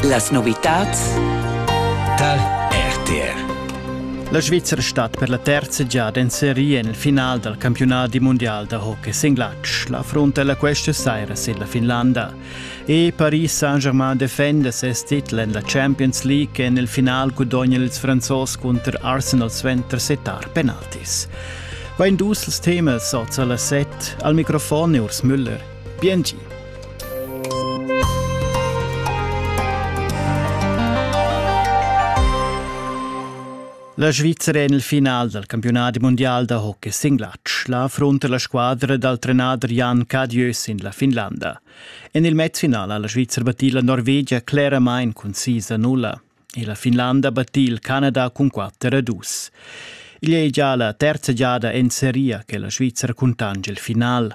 Las novitads dal RTR La Svizra stat per la terza giada en seria en il final dal campiunat di mondial da hockey singlatsch. La frontella questa saira sin la Finlanda. E Paris Saint-Germain defenda ses titel en la Champions League en il final gudogna ils Franzos cunter Arsenal suenter setar penaltis. Va in dus temas oz alla set. Al microfon è Urs Müller. Bien gi. La Svizra en il final dal campiunat mundial da hockey sin glatsch la affrunta la squadra dal trenader Jan Cadieu sin la Finlanda. En il matchfinal ha la Svizra battì la Norvegia cleramain cun sis a nulla e la Finlanda battì il Canada cun quatter a dus. Igl è gia la terza giada en seria che la Svizra cuntange il final.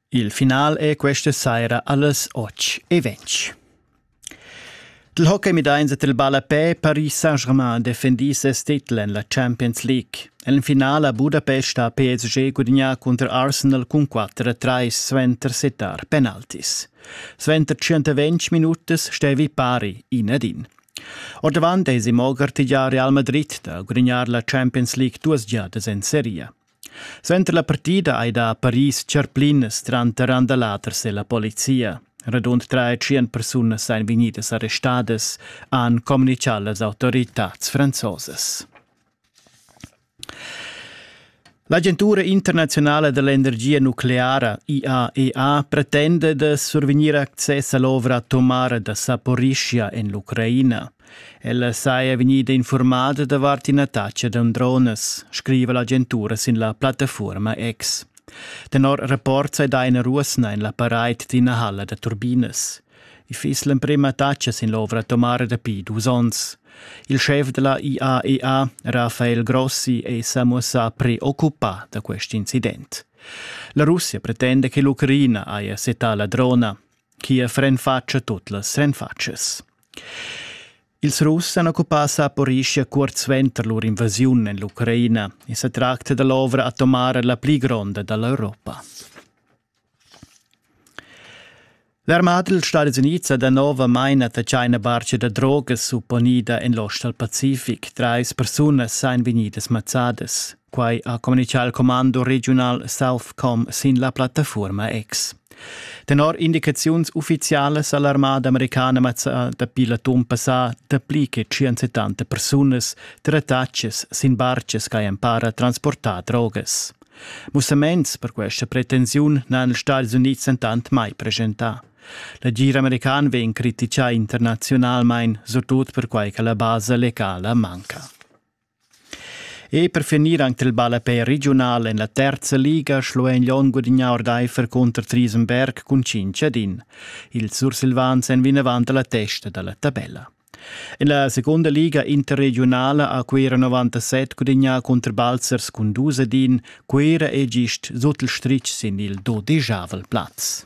Il final è questa saira allas 8.20. Dil hockey midains et il ballapé Paris Saint-Germain defendì ses titel en la Champions League. En finale a Budapest ha PSG gudignà cunter Arsenal cun 4-3 suenter setar penaltis. Suenter 120 minutas stevi pari in ad in. Ordavant eisi mo gartegiar Real Madrid da gudignar la Champions League duas giadas en seria. Suenter la partida ei da Paris tscharplinas tranter Andalaters e la polizia. Radund tre tschien persunas ein vegnidas arrestadas, han communicau las autoritads franzosas. L'agentura internazionala dell'energia nucleara IAEA pretenda da survegnir access all'ovra atomara da Saporischia en l'Ucraina. Ella saja vegnida infurmada davart ina taxa da dronas, scriva l'agentura sin la plattafuorma X. Tenor rapport sai dà ina ruosna en la paraid d'ina halla da turbinas. I fiss l'emprema taxa sin l'ovra atomara dapi dus onns. Il schef da la IAEA, Rafael Grossi, è sa muossà preoccupà da quest incident. La Russia pretenda che l'Ucraina haja setà la drona. Kiev renfatscha tut las renfatschas. Ils Russ han occupà Saporischia cuort suenter lur invasiun en l'Ucraina. I sa tracta da l'ovra atomara la pli gronda da l'Europa. L'armada dals Stadis Unids ha danovamain attaccà ina barca da drogas supponida en l'ostal Pacific. Trais persunas èn vegnidas mazzadas. Quai ha communitgà il commando regiunal Southcom sin la plattafuorma X. Tenor indicaziuns uffizialas ha l'armada americana mazzà dapi l'atun passà dapli che 170 persunas, trattatschas sin barchas ch'hajan empara transportà drogas. Mussaments per questa pretensiun n'han ils Stati Unids entant mai presentà. L'agir american vegn criticà internaziunalmain, surtut perquai che la basa legala manca. E per finir anc il ballapè regiunal en la terza liga schlo en Lon gudignà ordaifer cunter Triesenberg cun cinc ad in. Ils Sursilvans èn vinavant a la testa da la tabella. En la seconda liga interregionala ha Cuira 97 gudignà cunter Balzers cun dus ad in, Cuira è gist sut il stritg sin il dodegiavel plaz.